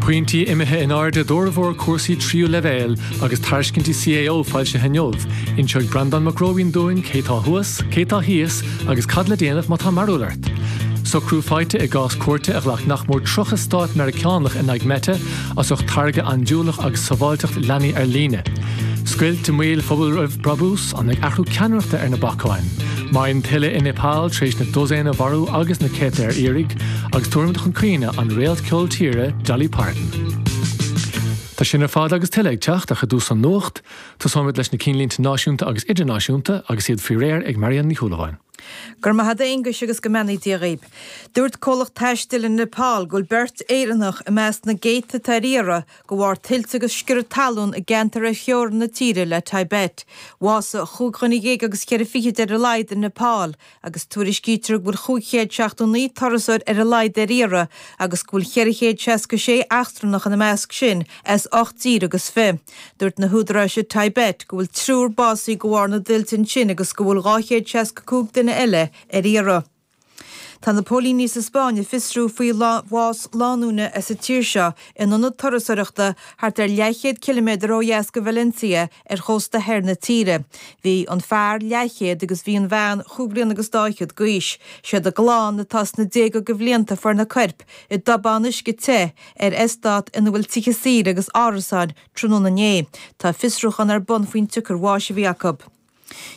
Pointí imithe in airde d'fhormhór cúrsaí tríú leibhéal agus tairiscintí CAO foilsithe inniu. Inseoidh Breandán Mac Róibín dúinn cé tá thuas, cé tá thíos agus cad le déanamh má tá mearbhall ort. Socrú faighte i gcás cúirte a ghlac nach mór 30 stát Meiriceánach in aghaidh Meta as ucht táirge andúileach agus sábháilteacht leanaí ar líne. Scoilt i mbaol phobal roimh bhrabús? An bhfuil athrú ceannaireachta ar na bacáin? Maidhm thuile i Nepal tar éis na dosaen a mharú agus na céadta ar iarraidh, agus táimid ag caoineadh an réalt cheol tíre Dolly Parton. Tá sin ar fad agus tuilleadh ag teacht ach i dtús an nuacht, tosóimid leis na cinnlínte náisiúnta agus idirnáisiúnta agus iad faoi réir ag Marianne Ní Shúilleabháin. Go raibh maith a't a Aonghuis agus go mbeannaí Dia dhaoib. Dúirt comhlacht taistil i Nepal go bhfuil beirt Éireannach i measc na gcéadta atá ar iarraidh, go bharr tuilte agus sciorradh talún i gceantair ar theorainn na tíre le Tibet. Bhásaigh chúig dhuine dhéag agus ceithre fichid ar a laghad i Nepal agus tuairiscítear go bhfuil 579 turasóir ar a laghad ar iarraidh agus go bhfuil 466 eachtrannach ina measc sin as ocht dtír agus fiche. Dúirt na húdaráis i Tibet go bhfuil triúr básaithe de bharr na dtuilte ansin agus go bhfuil 265 duine eile ar iarraidh. Tá na póilíní sa Spáinn ag fiosrú faoi bhás lánúine as an tír seo in ionad turasoireachta thart ar leathchéad ciliméadar ó dheas go Valencia ar chósta thoir na tíre. Bhí an fear leathchéad agus bhí an bhean chúig bhliana agus dá fhichead go aois. Siad a gclann atá sna déaga go bhlianta a fuair na coirp i dtobán uisce te ar estát ina bhfuil tithe saoire agus árasáin tráthnóna inné. Tá fiosrúchán ar bun faoin tsiocair bháis a bhí acu.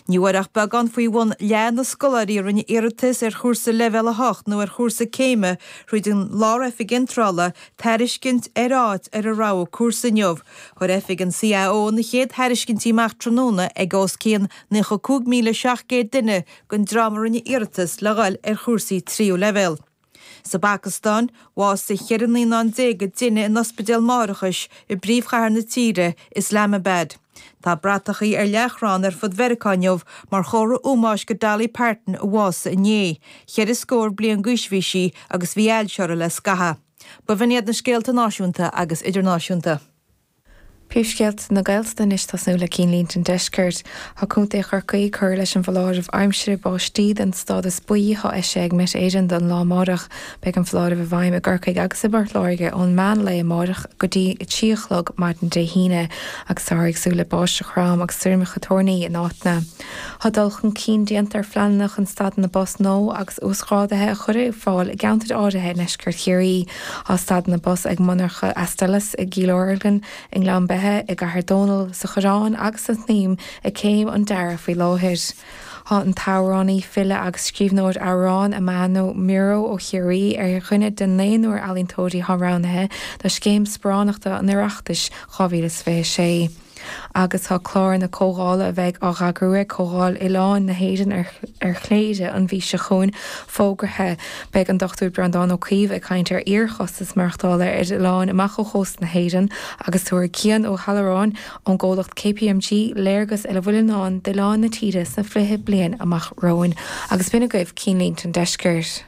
Ní bhfuair ach beagán faoi bhun leath na scoláirí a rinne iarratas ar chúrsa Leibhéal 8 nó ar chúrsa céime thríd an Lár-Oifig Iontrála tairiscint ar áit ar a rogha cúrsa inniu. Chuir Oifig an CAO na chéad thairiscintí amach tráthnóna ag os cionn 95,700 duine den dream a rinne iarratas le dhul ar chúrsaí tríú leibhéal. Sa bPacastáin, bhásaigh 14 naíonán i dtine in ospidéal máithreachais i bpríomhchathair na tíre, Islamabad. Tá bratacha ar leathchrann ar fud Mheiriceá inniu mar chomhartha ómóis go Dolly Parton a bhásaigh inné. Ceithre scór bliain d'aois a bhí sí agus bhí ailse uirthi le scaitheamh. B'in iad na scéalta náisiúnta agus idirnáisiúnta. Príomhscéalta na Gaeltachta anois ag tosnú le cinnlínte an Deiscirt. Tá Contae Chorcaí ag cur leis an bhfoláireamh aimsire báistí den stádas buí atá eisithe ag Met Éireann don lá amáireach. Beidh an foláireamh i bhfeidhm i gCorcaigh agus i bPort Láirge ón meán lae amáireach go dtí a trí a chlog maidin Dé hAoine agus táthar ag súil le báisteach throm agus stoirmeacha toirní in áiteanna. Tá dul chun cinn déanta ar phleananna chun stadanna bus nua agus uasghrádaithe a chur ar fáil i gceantair áirithe i nDeisceart Chiarraí. Tá stadanna bus ag monarcha Astellas i gCill Orglan, i nGleann Beithe, i gCathair Dónall, sa Choireán agus sa tSnaidhm ag céim an dearaidh faoi láthair. Tá an t-amhránaí, file agus scríbhneoir amhrán Amano Miro ó Chiarraí ar cheann de naonúr ealaíontóirí atá roghnaithe do Scéim Sparánachta an Oireachtais 2026. agus tá clár na comhdhála a bheidh á heagrú ag Comhdháil Oileáin na hÉireann ar Chléire an mhí seo chugainn fógartha. Beidh an Dr Breandán Ó Caoimh ag caint ar fhíorchostas maireachtála ar oileáin amach ó chósta na hÉireann agus tabharfaidh Cian Ó hAlluráin ón gcomhlacht KPMG léargas ar a bhfuil i ndán d'oileáin na tíre sna fiche bliain amach romhainn. Agus b'in agaibh Cinnlínte an Deiscirt.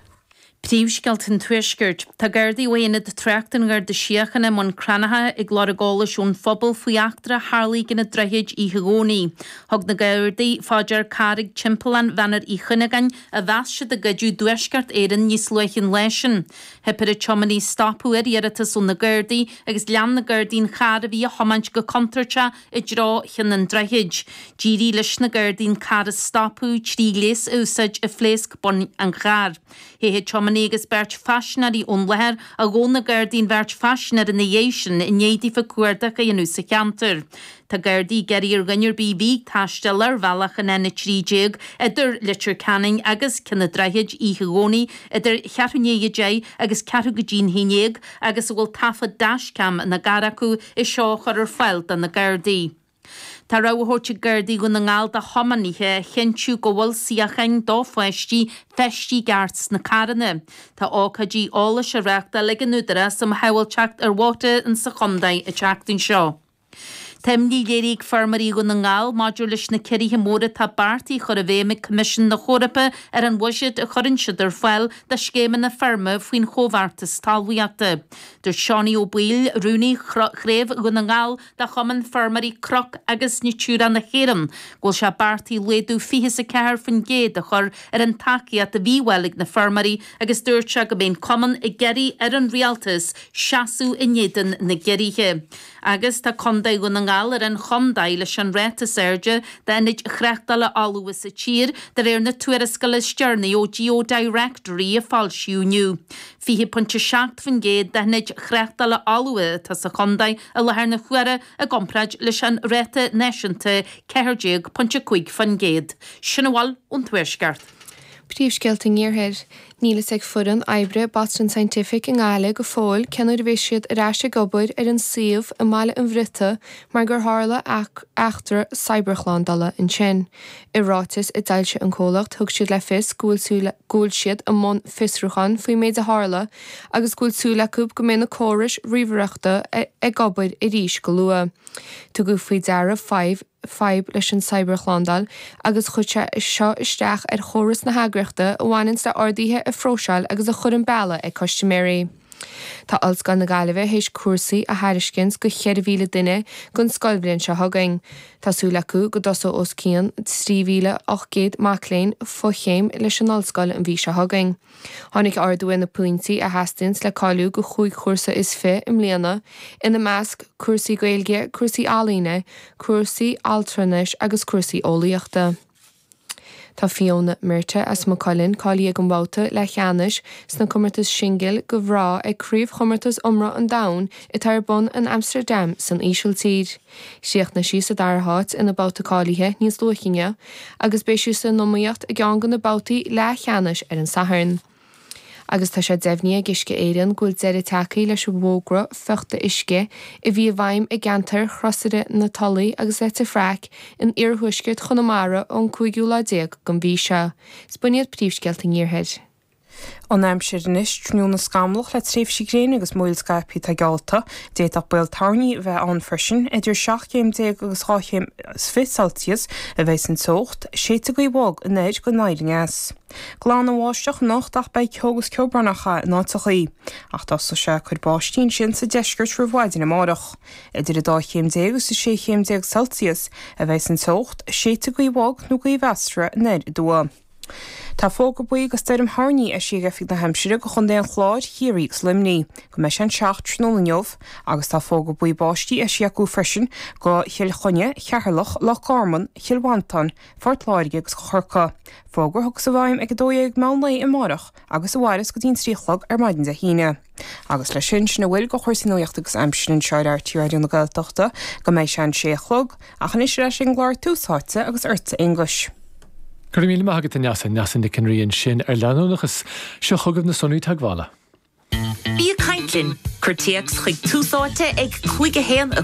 Príomhscéalta an Tuaiscirt. Tá Gardaí ó Aonad Tráchta an Gharda Síochána i mBun Cranncha ag lorg eolais ón phobal faoi eachtra a tharlaigh i gCionn an Droichid oíche Dhomhnaigh. Thug na Gardaí fá dear carr ag timpeallán Bheannar Uí Chuinneagáin a mheas siad a goideadh i dTuaisceart Éireann níos luaithe an lá sin. Theip ar an tiománaí stopadh ar iarratas ó na Gardaí agus lean na Gardaí an carr a bhí á thiomáint go contúirteach i dtreo Chionn an Droichid. D'éirigh leis na gardaí an carr a stopadh trí ghléas a úsáid a phléasc boinn an chairr. Theith an tiománaí agus beirt phaisinéirí ón láthair ach ghabháil na gardaí an bheirt phaisinéir ina dhiaidh sin i ndiaidh daofa cuardach a dhéanamh sa cheantar. Tá gardaí ag iarraidh ar dhuine ar bith a bhí ag taisteal ar bhealach an N13 idir Leitir Ceanainn agus Cionn an Droichid oíche Dhomhnaigh idir ceathrú i ndiaidh a deich agus ceathrú go dtí'n haon déag agus a bhfuil taifead dashcam ina gcarr acu í seo a chur ar fáil do na Gardaí. Tá rabhadh á thabhairt ag Gardaí Dhún na nGall do thiománaithe a chinntiú go bhfuil suíocháin do pháistí feistithe i gceart sna carranna. Tá ócáidí eolais á reáchtáil ag an Údarás um Shábháilteacht ar Bhóithre sa chontae an tseachtain seo. Tá imní léirithe ag feirmeoirí Dhún na nGall maidir leis na ciorruithe móra atá beartaithe a chur i bhfeidhm ag Coimisiún na hEorpa ar an bhuiséad a chuireann siad ar fáil do scéimeanna feirme faoin Chomhbheartas Talmhaíochta. Dúirt Seánie Ó Baoill, Rúnaí Chraobh Dhún na nGall de Chumann Feirmeoirí Cnoc agus Natura na hÉireann, go bhfuil sé beartaithe laghdú fiche is a ceathair faoin gcéad a chur ar an tacaíocht a bhí ar fáil ag na feirmeoirí agus dúirt sé go mbeidh an Cumann ag iarraidh ar an Rialtas seasamh in éadan na gciorruithe. agus tá Contae Dhún na nGall ar an chontae leis an ráta is airde d'ionaid thráchtála fholmha sa tír, de réir na tuarascála is deireanaí ó Geodirectory a foilsíodh inniu. 20.7% d'ionaid thráchtála fholmha atá sa chontae i láthair na huaire, i gcomparáid leis an ráta náisiúnta 14.5%. Sin a bhfuil ón Tuaisceart. Príomhscéalta an Iarthair. Níl fhios ag foireann oibre Boston Scientific i nGaillimh go fóill cé nuair a bheas siad ar ais ag obair ar an suíomh i mBaile an Bhriota mar gur tharla eachtra cybershlándála ansin. I ráiteas a d'fhoilsigh an comhlacht thug siad le fios go bhfuil siad i mbun fiosrúcháin faoin méid a tharla agus go bhfuil súil acu go mbeidh na córais ríomhaireachta ag obair arís go luath. Tugadh faoi deara fadhb fadhb leis an cybershlándáil agus chuir sé seo isteach ar chóras na heagraíochta a bhaineanns le orduithe a phróiseáil agus a chur an bealach ag custiméirí. Tá Ollscoil na Gaillimhe théis cúrsaí a thairiscint do 4,000 duine don scoilbhliain seo chugainn. Tá súil acu go dtosóidh os cionn 3,800 mac léinn fo-chéim leis an Ollscoil an mhí seo chugainn. Tháinig ardú ar na pointí a theastaíonns le cáiliú do chúig chúrsa is fiche i mbliana, ina measc, cúrsaí Gaeilge, cúrsaí ealaíne, cúrsaí altranais agus cúrsaí eolaíochta. Tá Fiona Murtagh as Maigh Cuilinn cáilithe ag an mbabhta leathcheannais sna comórtais singil do mhná ag craobhchomórtas iomra an domhain atá ar bun in Amsterdam san Ísiltír. Chríochnaigh sí sa dara háit ina babhta cáilithe níos luaithe inniu agus beidh sí san iomaíocht i gceann de na babhtaí leathcheannais ar an Satharn. Agus tá sé deimhnithe ag Uisce Éireann go bhfuil deireadh tagtha leis an bhfógra fiuchta uisce a bhí i bhfeidhm i gceantar Chrosaire na Tulaí agus Leitir Fraic in iarthuaisceart Chonamara ón cúigiú lá déag den mhí seo. Is b'in iad Príomhscéalta an Iarthair. An aimsir anois, tráthnóna scamallach le tréimhsí gréine agus múraíl scaipthe atá geallta. D'fhéadfadh baol toirní a bheith ann freisin. Idir 17 céim agus 2 chéim is fiche Celsius a bheas an teocht. Séidfidh gaoth bhog anoir go anoir aneas. Glan ó bháisteach anocht ach beidh ceo agus ceobhranacha in áiteachaí. Ach tosóidh sé ag cur báistí ansin sa deisceart roimh mhaidin amárach. Idir 12 chéim agus 16 chéim Celsius a bheas an teocht. Séidfidh gaoth bhog nó gaoth mheasartha anoir aduaidh. Tá fógra buí do stoirm thoirní eisithe ag Oifig na hAimsire do Chontae an Chláir, Chiarraí agus Luimnigh go mbeidh sé an 7 tráthnóna inniu agus tá fógra buí báistí eisithe acu freisin do Chill Chainnigh, Cheatharlach, Loch Garman, Chill Mhantáin, Phort Láirge agus do Chorcaigh. Fógra a thiocfas i bhfeidhm ag 12:00 meán lae amárach agus a mhairfeas go dtí an 3 a chlog ar maidin Dé hAoine. Agus leis sin, sin a bhfuil de chúrsaí nuachta agus aimsire anseo ar RTÉ Raidió na Gaeltachta go mbeidh sé an sé a chlog. Ach anois ar ais ag an gclár Tús Áite agus ortsa, a Fhachtna. Go raibh míle maith agat, a Neasa, Neasa Ní Ionnrachtaigh ansin ar leanúnachas. Seo chugaibh na sonraí teagmhála. Bí ag caint linn! Cuir téacs chuig Tús Áite ag, cuig, a haon, a.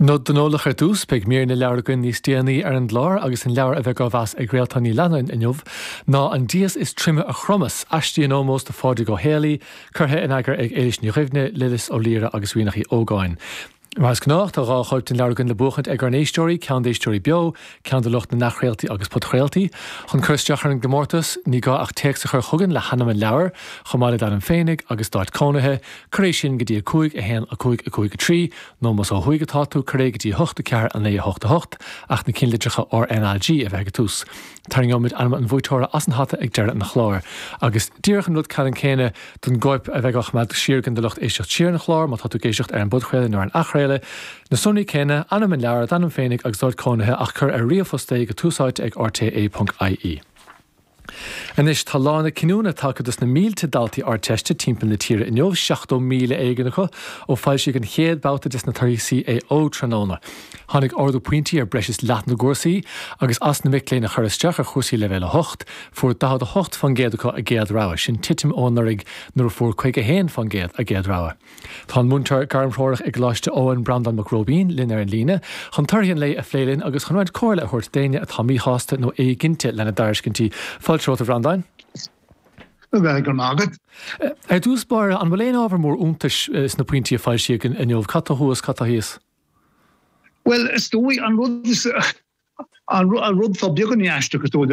Nod don eolach ar dtús, beidh mír na leabhar againn níos déanaí ar an gclár agus an leabhar a bheidh á mheas ag Réaltán Ní Leannáin inniu ná An dias is troime a chromann, aistí in ómós do Phádraig Ó Héalaí, curtha in eagar ag Ailbhe Ní Ghearbhuigh, Lillis Ó Laoire agus Ríonach uí Ógáin. Mar is gnách, tá dhá chóip den leabhar againn le buachaint ag ár n-éisteoirí, ceann d'éisteoirí beo, ceann do lucht na n-athchraoltaí agus podchraoltaí. Chun cur isteach ar an gcomórtas, ní gá ach téacs a chur chugainn le hainm an leabhair, chomh maith le d'ainm féinig agus d'áit cónaithe, cuir é sin go dtí 5 1 5 5 3 nó más ó thuaidh atá tú, cuir é go dtí 8 4 9 8 8, ach na cinnlitreacha R, N, A, G a bheith ag an tús. Tarraingeoimid ainm an bhuaiteora as an hata ag deireadh an chláir. Agus díreach an rud ceannann céanna don gcóip a bheidh á choimeád siar againn do lucht éisteacht siar an chláir, má tá tú ag éisteacht ar an bpodchraoladh nó ar an athchraoladh, na sonraí céanna, ainm an leabhair, d'ainm féinig agus d'áit cónaithe, ach cuir ar ríomhphost é go túsáite ag rte. ie. Anois tá lá na cinniúna tagtha dos na mílte daltaí Ardteiste timpeall na tíre inniu, 70,000 éigin acu ó foilsíodh an chéad bhabhta des na tairiscintí CAO tráthnóna. Tháinig ardú pointí ar breis is leath na gcúrsaí agus as na mic léinn a chuir isteach ar chúrsaí Leibhéal 8, fuair 48% acu a gcéad rogha, sin titim ó anuraidh nuair a fuair 51% a gcéad rogha. Tá an múinteoir gairmthreorach i gColáiste Eoin, Breandán Mac Róibín, linn ar an líne chun torthaí an lae a phlé linn agus chun roinnt comhairle a thabhairt d'éinne atá míshásta nó éiginnte lena dtairiscintí. Fáilte romhat, a Bhreandáin. Go raibh maith agat. Ar dtús báire, an bhfuil aon ábhar mór iontais sna pointí a foilsíodh inniu? Cad tá thuas, cad tá thíos? Bhuel, is dóigh an rud is an rud tá beagan aisteach is dóigh